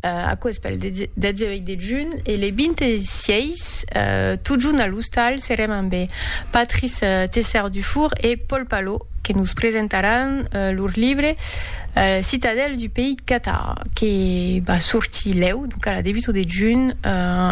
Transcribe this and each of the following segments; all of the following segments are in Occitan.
Aquò es pel 18 de junh e le 26, totjorn a l'ostal, serem amb Patrice Tessart-Dufour e Paul Palot que nos presentaràn lor libre Citadelle du pays Cathare que va sortir lèu, donc a la debuta de junh,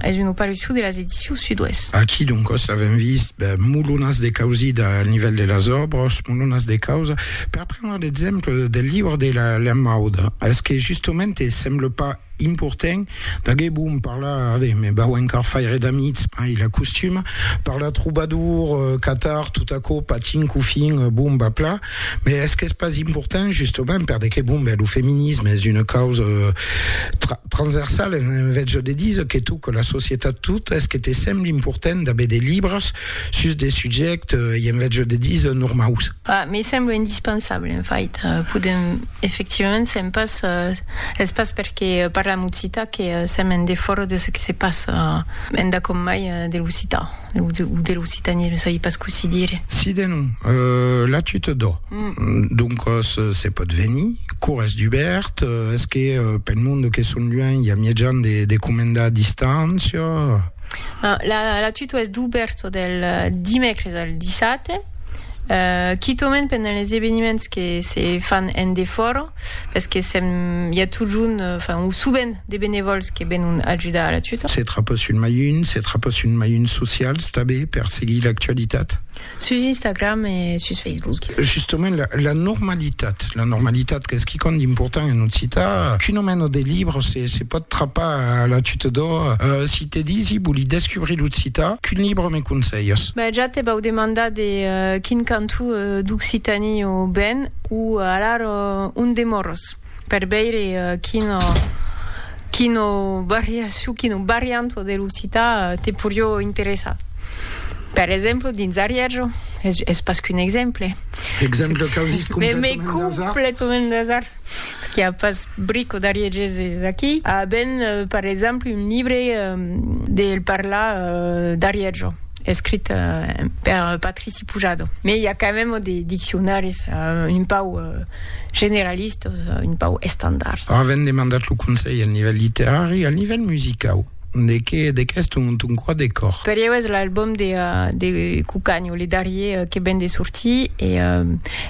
es una opariçon de las Edicions Sud-Ouest. Aquí doncòs l'avèm vist, mulhonas de causida al nivèl de las òbras, mulhonas de causa. Per prendre l'exemple del libre de la lenmauda, es que justement te semble pas important d'aguer bon parlar ave, me vau encar faire d'amics, mai la costuma, parlar trobadour, catar tot aquò patin qu'au fin bon va pla, me es qu'es pas important justement per de que bon ben lo feminisme es una causa tra transversal en en vètge de diser que tot que la societat tot es que te semble important d'aver de libres sus de subjèctes e en vètge de diser normaus. Bah, me sembla indispensable, en fait. Podem, efectivament, sèm pas... Es pas perque parlam occitan que sèm en defòra de çò que se passa endacòm mai de l'occitan, o de l'occitanisme, sabi pas cossí dire. Si de non, la tu te dò. Doncas, se pòt venir, cour es dubèrt, es que pel monde que son luènh i a mièjan de comendar distància? La tu t'o es dubèrt del dimècres al dissate. Euh, quitaument pendent les eveniments que se fan en defòra, pes que sèm, i a totjorn, enfin, o sovent, de benevòls que venon ajudar a la tuta. Se trapatz un mailhun, se trapatz un mailhun socials tabé per seguir l'actualitat? Sus Instagram e sus Facebook. Justaument, la, la normalitat, la normalitat qu'es quicòm d'important en occitan, qu'un omèno de libre se, se pòt trapar a la tuta d'ò. Euh, si te disi, voli descubrir l'occitan, qu'un libre me conselhas? Ben, ja te vau demandar de quin cantó d'Occitanie o ben, o alar on demòros, per veire quina, quina variacion, quina varianta de l'occitan te porió interessar. Per exemple, dins Arièjo, es pas qu'un exemple. Exemple causit completament d'asard. Parce qu'il n'y a pas brico d'Arié Gesés aquí. A ben, par exemple, un libre del parlar d'Arièjo, escrit per Patrici Pujado. Mais il y a quand même des dictionaris un pau generalistes, un pau estandards. A ben demandat lo conselh al nivèl literari, al nivèl musicau. De qué de qu'es ton ton quoi de còr? Per ieu es l'album de de Cucanio, le darrier que ven de sortir e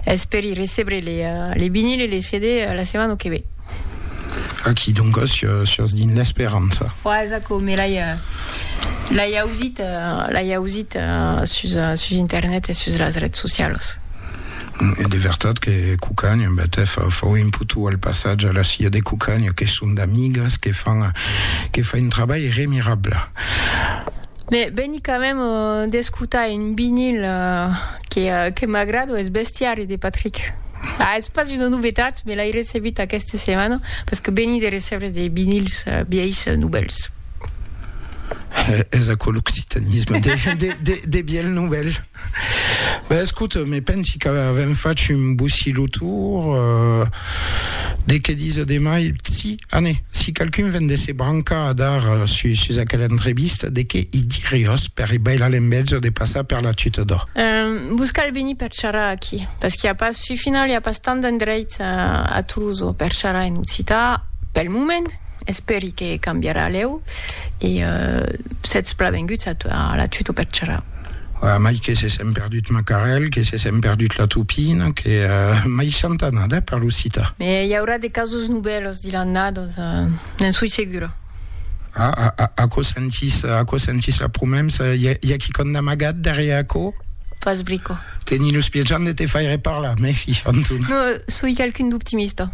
esperi recebre le le vinil e le CD la setmana que ve. Aqui donc sios dins l'esperança. Ua es aquò, me l'ai l'ai ausit l'ai ausit sus sus internet e sus las rets socialos. E de vertat que Cucagna, en bèth, hè, fau imputu al passatge a la Cia de Cucagna, que son d'amigas, que fan, que fa un trabalh remirable. Me veni quand même d'escotar un vinyl que, que m'agrado, es Bestiari de Patrick. Ah, es pas una novetat, me l'ai recebut aquesta setmana, parce que veni de recebre de vinyls vièis novèls. Es aquò l'occitanisme, de, de, de, de vièlh novèl. Ben escoute, me pensi qu'avèm fach un bocí lo tour de qué disa de mai. Si, ané, si qualqu'un ven de se brancar a dar sus, sus aquela entrevista, de qué i diriós per i bailar l'enveja de passar per la tuta d'ò. Ehm, vos cal venir per charrar aquí, parce qu'i a pas, fi final, i a pas tant d'endreits a Tolosa per charrar en occità, pel moment, espèri que cambiarà lèu, e sètz plavenguts a la tuta per charrar. A mai que se sèm perdut Macarèl, que se sèm perdut la Tupina, que mai chanta nada, eh, per lo cita. Me i aurà de casos novèlos dilan nados, ne'n soi segura. Ah, a, a, aquò sentís, aquò sentís la promemsa, i a, i a quicòm d'amagat darrièr aquò? Pas brico. Teni los pies jan de te faire parlar, me fi, Fantuna. No, soi qualqu'un d'optimista.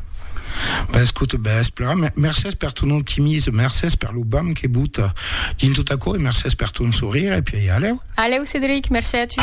B'escoute, b'es plan, mercés per ton optimisme, mercés per lo bam que bota. Dins tot aquò, e mercés per ton sorire, e puèi alèu. Alèu, Cedric, mercé a tu.